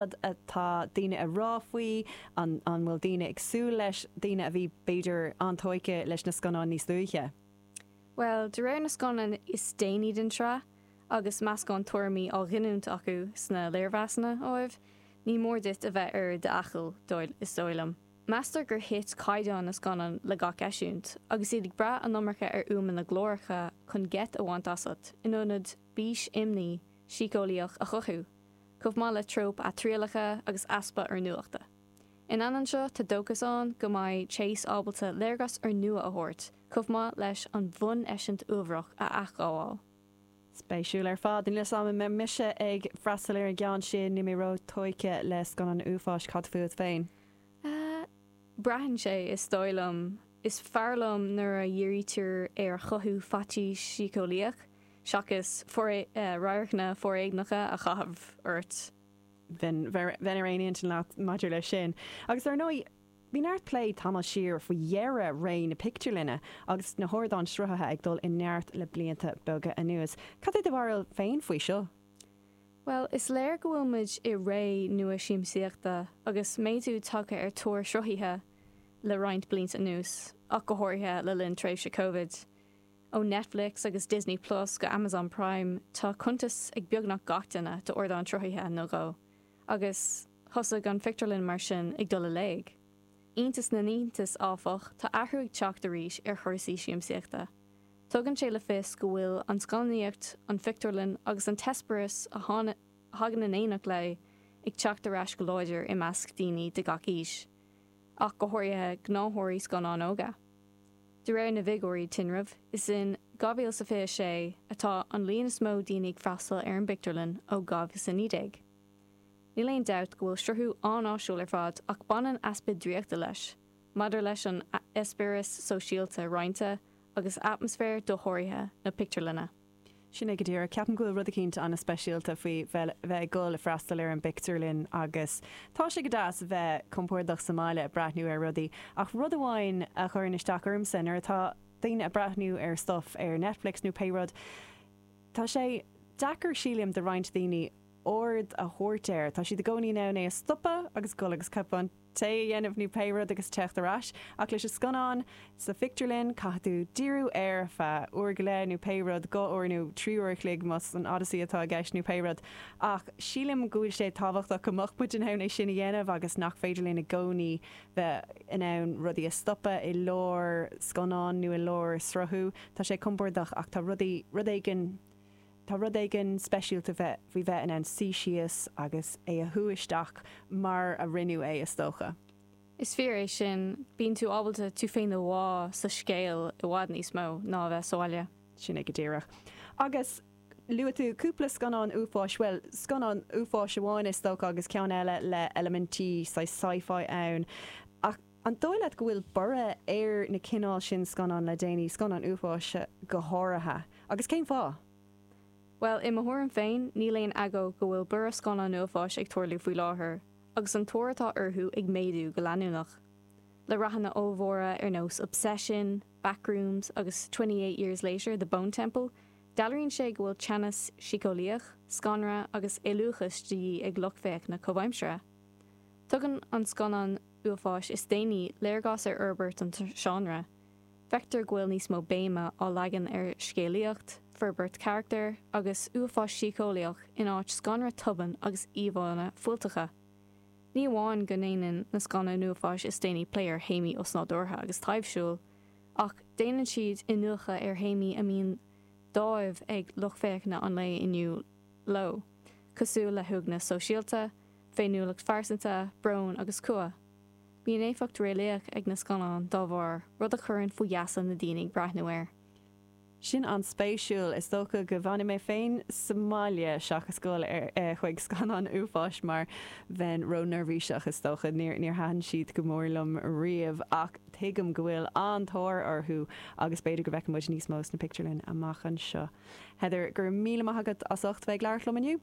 Cad atá daoine a rá faoi? An bhfuil daoine ag súil leis, daoine a bhí, b'fhéidir, an-tóigthe leis na scannáin níos luaithe? Bhuel, de réir na scannán is déanaí den tsraith, agus meascán tuairimí á ghiniúint acu sna léirmheasanna, ámh, ní mór duit a bheith ar d'fhaichill, is dóigh liom. Meastar gur thit caighdeán na scannán le gach eisiúint, agus iad ag brath an iomarca ar fhuaimeanna glóracha chun geit a bhaint asat, in ionad bís, imní, síceolaíoch a chothú. chomh maith le tróip athrialacha agus easpa úrnuachta. In ainneoin seo, tá dóchas ann go mbeidh Chase ábalta léargas úrnua a thabhairt, chomh maith leis an bhuneisint uafar a athghabháil. Spéisiúil ar fad. Níl 'fhios a'm an mbeidh mise ag freastal ar an gceann sin, níl mé róthógtha le scannáin uafáis, cad fút féin? Ahh. braitheann sé, is dóigh liom. Is fearr liom nuair a dhírítear ar chothú faitís síceolaíoch, seachas radharcanna foréigneacha a chaitheamh ort. Bheinn ar aon intinn leat maidir leis sin. Agus dar ndóigh, bhí neart plé tamall siar faoi dheireadh ré na pictiúrlainne agus na hardáin sruthaithe ag dul i neart le blianta beaga anuas. Cad é do bharúil féin faoi seo? Bhuel, is léir go bhfuil muid i ré nua siamsaíochta agus méadú tagtha ar thóir sruthaithe le roinnt blianta anuas, ach go háirithe le linn tréimhse Covid. Ó Netflix agus Disney Plus go Amazon Prime, tá cuntas ag beagnach gach duine d'ardán sruthaithe nó dhó. Agus thosaigh an phictiúrlann mar sin ag dul i léig. Iontas na n-iontas, áfach, tá athrú ag teacht arís ar chúrsaí siamsaíochta. Tugann sé le fios go bhfuil an scannánaíocht, an phictiúrlann agus an t-eispéireas a thagann in éineacht léi ag teacht ar ais go láidir i measc daoine de gach aois, ach go háirithe gnáthóirí scannán óga. De réir na bhfigiúirí tinrimh, is in 2026 atá an líon is mó daoine ag freastal ar an bpictiúrlann ó 2019. Níl aon dabht go bhfuil sruthú an-áisiúil ar fad ach baineann easpa draíochta leis, maidir leis an eispéireas sóisialta roinnte agus atmaisféar dosháraithe na pictiúrlainne. Sin é go díreach. Ceapaim go bhfuil rud eicínt ana-speisialta faoi bheith ag dul ag freastal ar an bpictiúrlann agus tá sé go deas bheith compordach sa mbaile ag breathnú ar rudaí ach rud amháin a chuireann isteach ormsa nuair atá daoine ag breathnú ar stuff ar Netflix nó pé rud, tá sé deacair sílim do roinnt daoine aird a thabhairt air, tá siad i gcónaí in ann é a stopadh agus dul agus cupán. tae a dhéanamh nó pé rud agus teacht ar ais. Ach leis an scannán sa phictiúrlann, caithfidh tú díriú air ar feadh uair go leith nó pé rud, dhá uair nó trí uair a chloig más an Odyssey atá i gceist nó pé rud. Ach sílim go bhfuil sé tábhachtach go mbeadh muid in ann é sin a dhéanamh agus nach féidir linn i gcónaí bheith in ann rudaí a stopadh i lár scannáin nó i lár sruthú. Tá sé compordach ach tá rudaí, rud éigin, Tá rud éigin speisialta faoi bheith in ann suí síos agus é a shú isteach mar a rinneadh é, is dócha. Is fíor é sin, bíonn tú ábalta tú féin a bhá sa scéal i bhfad níos mó ná a bheith sa bhaile. Sin é go díreach. Agus luaigh tú cúpla scannán uafáis, bhuel, scannán uafáis amháin, is dócha, agus ceann eile le eilimintí saghas sci-fi ann. Ach. An dóigh leat go bhfuil borradh ar na cineál sin scannáin le déanaí, scannáin uafáis go háirithe, agus cén fáth? Bhuel, i mo thuairim féin, níl aon agó go bhfuil borradh scannán uafáis ag tarlú faoi láthair, agus an tóir atá orthu ag méadú go leanúnach. Le rathanna ollmhóra ar nós Obsession, Backrooms agus Twenty Eight Years Later, The Bone Temple, dealraíonn sé go bhfuil teannas síceolaíoch, scanradh agus éalúchas de dhíth ag lucht féachana comhaimseartha. Tugann na scannáin. uafáis is déanaí léargas ar fhorbairt an seánra, feictear go bhfuil níos mó béime á leagan ar scéalaíocht, forbairt carachtar agus uafás síceolaíoch in áit scanradh tobann agus íomhánna fuilteacha. Ní amháin go ndéanann na scannáin uafáis is déanaí plé ar théamaí osnádúrtha agus taibhsiúil, ach déanann siad iniúchadh ar théamaí a mbíonn dáimh ag lucht féachana an lae inniu leo, cosúil le huaigneas sóisialta, féiniúlacht phearsanta, brón agus cumha. Bíonn éifeacht réalaíoch ag na scannáin dá bharr, rud a chuireann faoi gheasa na daoine ag breathnú air. Sin an-spéisiúil. Is dócha go bhfanfaidh mé féin sa mbaile seachas gabháil chuig scannáin uafáis mar bheinn ró-neirbhíseach, is dócha. Níor thaitin siad go mór liom riamh ach tuigim go bhfuil an-tóir orthu agus b'fhéidir go bhfeicfidh muid níos mó sna pictiúrlainn amach anseo. Heather, go raibh míle maith agat as ucht bheith ag labhairt liom inniu.